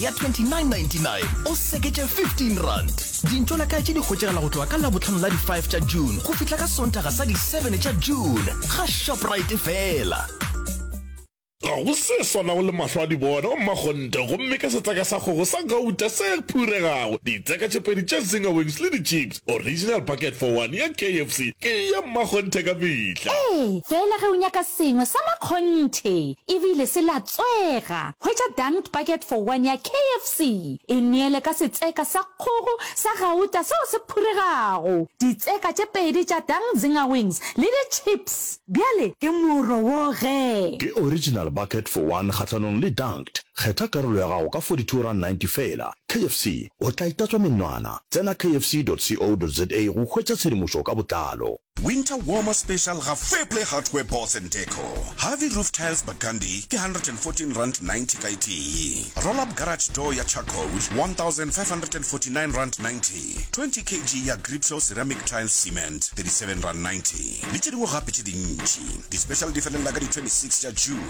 ya 2999 o seketše 15 rand dintšo la kae tše di hwetšegala go tloga ka labotlhano la di-5 tša june go fihla ka sontaga sa di-7 tša june ga shoprite fela ga go se swanago le mahlo a di bona go mmakgonte gomme ke setseka sa kgogo sa gauta se phuregago ditseka tše pedi tše zingawings le di-chips Original bucket for one ya KFC ke ya mmakgonthe ka mehla. Ee, fela ge o nyaka sengwe sa makgonthe e bile se latswega, hwetša Dunked Bucket for One ya KFC. E neele ka setseka sa kgogo sa gauta seo se phuregago, ditseka tše pedi tša Dunked Zinger Wings le ditšhips. Bjale ke mo rowoge! Ke Original bucket for one kgahlanong le Dunked. Kgetha karolo ya gago ka 42 rand 90 feela. KFC o tla itatswa menwana. Tsena kfc.co.za go hwetša tshedimošo ka botlalo. Winter Warmer Special ga Fairplay Hardware Boards and Deco. Harvey Roof Tiles Burgundy ke R114.90 ka e tee. Roll-up Garage Door ya Charcoal R1,549.90. 20 kg ya Gripshaw Ceramic Tile Cement R37.90. Le tše dingwe gape tše dintši. Di-special di felelela ka di 26 tša June.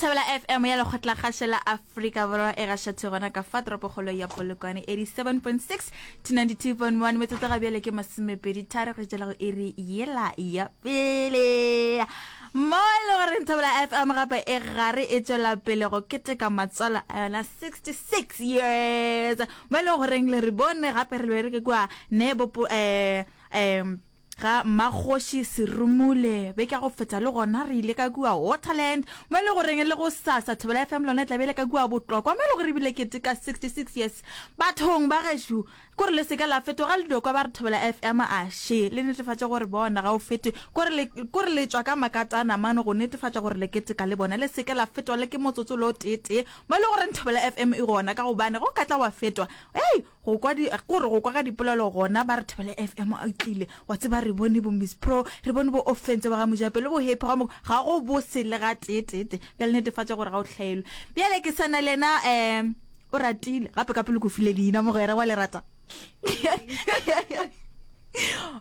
Thabela FM ya lekgotlakgaše la Afrika Borwa e gašethe gona ka fa toropokgolo ya Polokwane 87.6 to 92.1 metsotso ga bjale ke masomepedi tharo re tšela go iri yela ya pele mo e le goreng Thabela FM gape e gare e tšwela pele go keteka matswalo a yona 66 years mo e le goreng le re bone gape re be re ke kua ne bopo um um Ga Mmakgoši Serumule, beke ya go feta le gona re ile ka kua Waterland mo e le goreng le go sasa Thobela FM lona e tla be le ka kua Botlokwa mo e le gore ebile keteka 66 years. Bathong ba gešo kore le seke la fetoga le dokwa ba re Thobela FM a še le netefatše gore bona ga o fete kore le kore le tšwa ka makatana mano go netefatša gore le keteka le bona le seke la fetwa le ke motsotso lo tee tee mo e le goreng Thobela FM e gona ka gobane go ka tla wa fetwa hey go kwa di ke gore go kwa ga dipolelo gona ba re thobele fm a tlile wa tseba re bone bo miss pro re bone bo offense ba ga mojape le bo happy ga mo ga go bo se le ga teetete bjale netefatša gore ga o hlaelwe bjale ke sana le yena um o ratile gape ka pele ko file leina mogwera wa le rata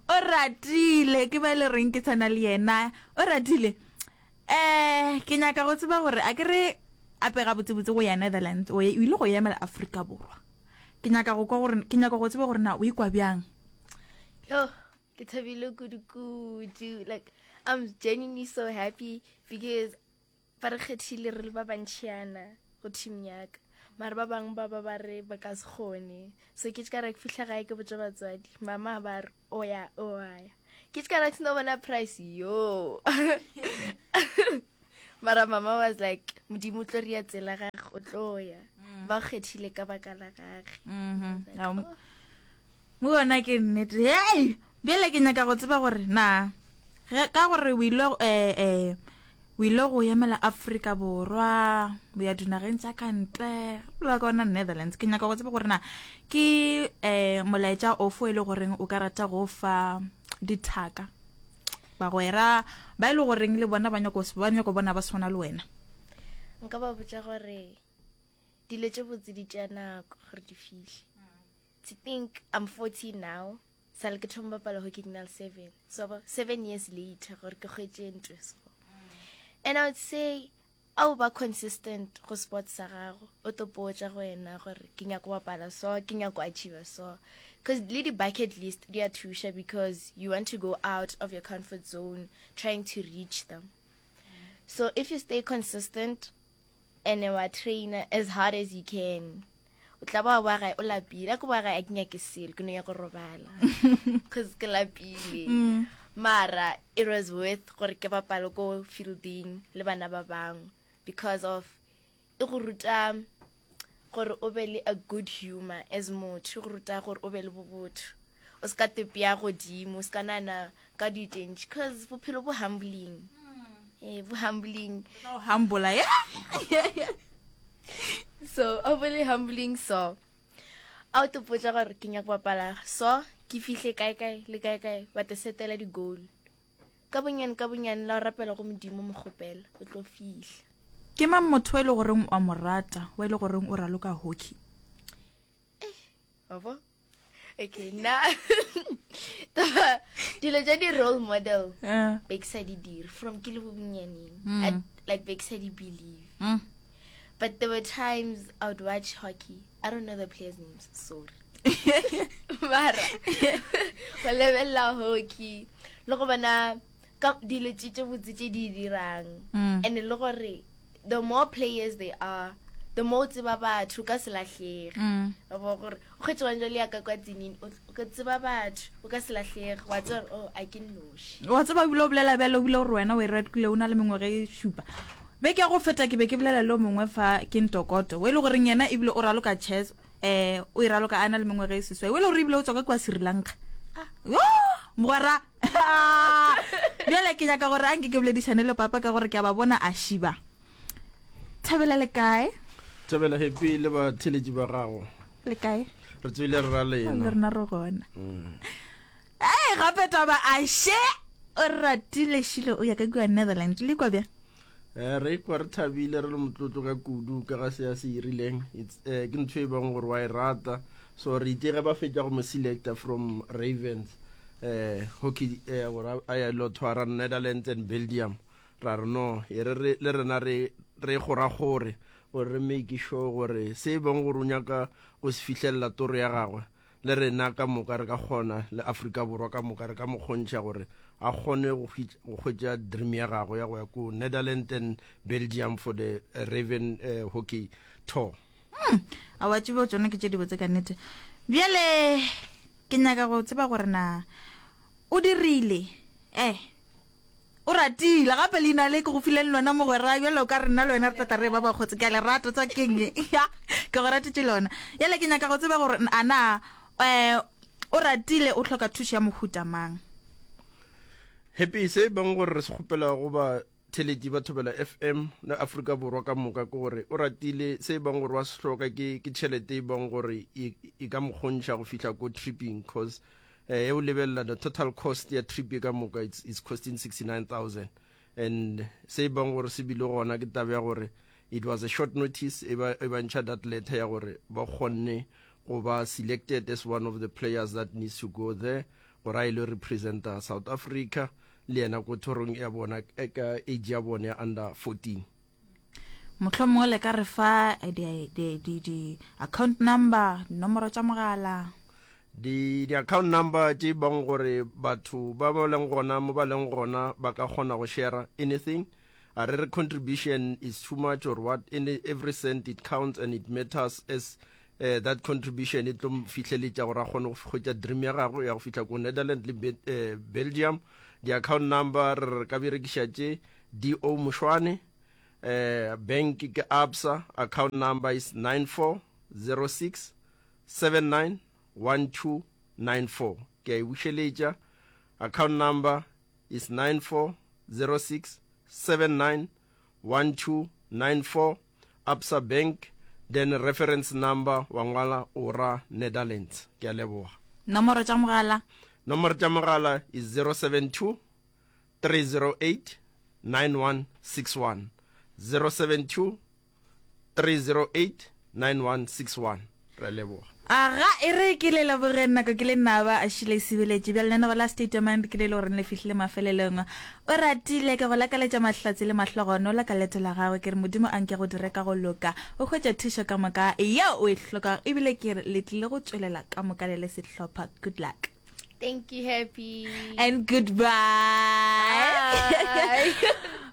o ratile ke ba e le reng ke sana le yena o ratile um ke nyaka go tseba gore a ke re ape gabotsebotse go ya netherlands o ile go emela aforika borwa Ke nyaka go kwa gore ke nyaka go tseba gore na o ikwa bjang. Yo, ke thabile kudu kudu. Like I'm genuinely so happy because ba re kgethile re le ba bantšhiana go team yaka. Mara ba bang ba ba ba re ba ka se kgone. So ke ka ra ke fihla gae ke botša batswadi, mama ba re oya oya ke tsika na tsino bona price yo mara mama was like modimo tlo ria tsela ga go tloya mm. ba kgethile ka baka la gage mm-hmm. oh. mo bona ke nnete hey bjale ke nyaka go tseba gore na ka gore o ile eh eh O ile go emela Afrika Borwa, o ya dinageng tša ka ntle, la ka ona Netherlands. Ke nyaka go tseba gore na ke um molaetša ofo e le goreng o ka rata go fa dithaka bagwera ba e le goreng le bona ba nyako ba nyako bona ba swana le wena nka ba botsa gore dilo tse botse di tša nako gore di fihle to think i'm 40 now Sa le ke thoma bapala hockey ke na le seven so ba seven years later gore ke kgwetse ntwe so and i would say a o ba consistent go sports sa gago o tlo potsa go wena gore ke nyako bapala so ke nyako achieve so because le di-bucket list di a thuša because you want to go out of your comfort zone trying to reach them so if you stay consistent and wa trainer as hard as you can o tla ba wa boa gae o lapile a ko boa gae a ke nyake selo ke no ya go robala cause ke lapile mm. mara it was worth gore ke bapale ko fielding le bana ba bangwe because of e go ruta gore o be le a good humor as motho e go ruta gore o be le bobotho o se ka tepea godimo o se ka nana Ka do you think cause bophelo bo humbling eh bo humbling no humble yeah so overly humbling so a o topotsa gore ke nyaka bapala so ke fihle kae kae le kae kae ba te setela di-goal ka bonyane ka bonyane la o rapela go modimo mogopela o tlo fihla ke mang motho wa e le goreng wa mo rata wa e le goreng o raloka hockey Baba. Okay, na taba dilo tsa di role model uh. be ke sa di dire from ke le bobonyaneng mm. like be ke sa di believe mm. but there were times i would watch hockey i don't know the players names sorry mara go lebelela hockey le go bona ka dilo tše tše botse tše di dirang mm. and le gore the more players they are the more o tseba batho ka selatlhege mm. wa bo gore o kgetse bang jale yaka kwa tsenini o tseba batho o ka selatlhege wa tseba gore o oh, a ke noši wa tseba bile o bolela bjale o bile gore wena o e red kule o na le mengwage e šupa be ke go feta ke be ke bolela le o mongwe fa ke ntokoto o e le goreng yena ebile o raloka chess um o e raloka a na le mengwage e seswai o e le gore ebile o tswa ka kwa sri lanka ah. mogwera Bjale ke nyaka gore a nke ke boledišane le papa ka gore ke a ba bona a šiba. Thabela le kae? Thabela happy le ba theletši ba gago. Le kae? Re tswile re ra lena. Le rena re gona. Mm. Hey, gape taba a she o ratile shilo o ya ka kwa Netherlands le kwa bjang? Eh, re ikwa re thabile re le motlotlo ka kudu ka ga se a se irileng eh, ke ntho e bang gore wa e rata so re itse ge ba fetša go mo selecta from ravens eh, hockey eh, gore a ya lo thwara netherlands and belgium ra re no e re le rena re re goragore gore re make sure gore se e bang gore o nyaka go se fitlhelela toro ya gagwe le rena ka moka re ka kgona, le Afrika Borwa ka moka re ka mo kgontšha gore a kgone go hwetša dream ya gagwe ya go ya ko Netherlands and Belgium for the Raven uh, Hockey Tour. Hmm, a wa tsebo tsone ke tše dibotse ka nete. Bjale ke nyaka go tseba gore na o dirile eh Oratile, gape leina le ke go fileng lona mogwera bjalo ka rena le wena re tata re ba bakgotsi ke a le rata tsa keng ya ke go ratetše lona yale ke nyaka go tseba gore ana um o ratile o tlhoka thušo ya mohuta mang happy se bang gore re se kgopela go ba theletši ba thobela fm le afrika borwa ka moka ke gore o ratile se bang gore wa sehloka ke ke tšhelete e bang gore e, e ka mokgontšha go fihla ko tripping cause Ge o lebelela the total cost ya trip e ka moka it's, it's costing 69000 and se e bang gore se bile gona ke taba ya gore it was a short notice e ba e bantšha that letter ya gore ba kgonne go ba selected as one of the players that needs to go there gore a ile representa south africa le yena ko thorong ya bona ka age ya bone ya under 14 mohlomongwe le ka re fa di-account number dinomoro tša mogala di-account number tše bang gore batho ba ba leng gona mo ba leng gona ba ka kgona go share anything a re re contribution is too much or what in every cent it counts and it matters as uh, that contribution e tlo fihleletša gore a kgone go kgwetša dream ya gagwe ya go fihla ko netherland le uh, belgium di-account number re ka berekiša tše DO Mushwane, um bank ke Absa, account number is 9406791294, ke a e bušeletša, account number is 9406791294, Absa Bank, then reference number wa ngwala o ra Netherlands. Ke a leboga. Nomoro tša mogala. Nomoro tša mogala is 072 308-9161, 072-308-9161. Re a leboga. A ga e re ke le leboge nako ke le naba a šile e sibeletše bjale neno ba la statement ke le e le goreng le fihlile mafelelong o ratile ke go lakaletša mahlatse le mahlogonola ka leto la gago ke re modimo a nke go dire ka go loka o hwetše thušo ka moka yeo o e hlokago ebile ke re le tlile go tšwelela ka moka le le sehlopha good luck Thank you, Happy. And goodbye.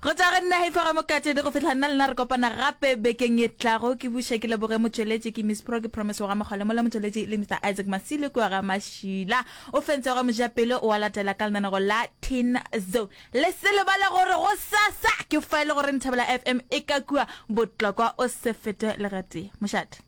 go tswa go nna hefa ga mokatedi go fitlha nna lena re kopana gape bekeng e tlago ke buše ke leboge motšweletši ke miss pro ke promise wa gamagole mola motšweletši le mr isaac masile kua ga mašila o fentse ga mojapele o a latela ka lenanego la tin zo le se lebale gore go sasa ke fa e le gore nthabela fm e ka kua botlokwa o se fete legatee mošate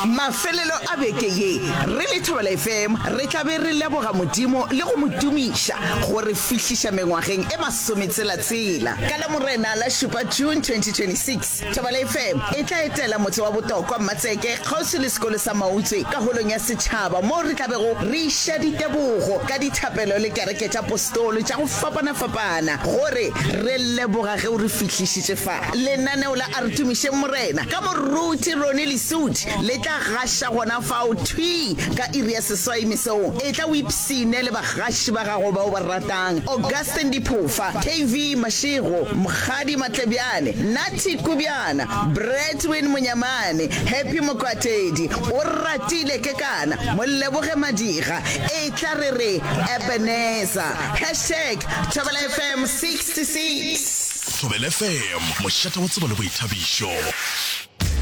Mafelelo a beke ye, re le Thobela FM re tla be re leboga Modimo le go mo tumiša go re fihliša mengwageng e masometshela-tshela. Ka Lamorena la šupa, June 2026, Thobela FM e tla etela motse wa Botokwa, Mmatseke, kgauswi le sekolo sa Mautswe ka Holong ya Setšhaba moo re tla bego re iša ditebogo ka dithapelo le kereke tša Postolo tša go fapana-fapana go re re leboga ge o re fihlišitše fa. Lenaneo la A Re Tumišeng Morena ka Moruti Ronnie Lesuthi le tla gaša gona fao thwi ka iri ya seswai mesong. Etla o ipshine le bagaši ba gago ba o ba ratang, Augustine Diphofa, KV Mashego, Mokgadi Matlebjane, Natty Kubjana, Bradwin Monyamane, Happy Mokwatedi, Oratile Kekana, Moleboge Madiga, Etla re re Ebenezer. Hashtag Thobela FM 66. Thobela FM, mošate wa tsebo le boithabišo.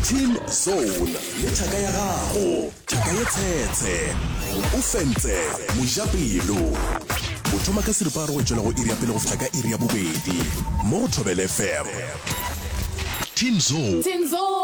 Team Zone le thaka ya gago thaka ye tshetshe o fentse mojapelo o thoma ka seripa re go tšwela go iri ya pele go fihla ka iri ya bobedi mo go thobele fm Team Zone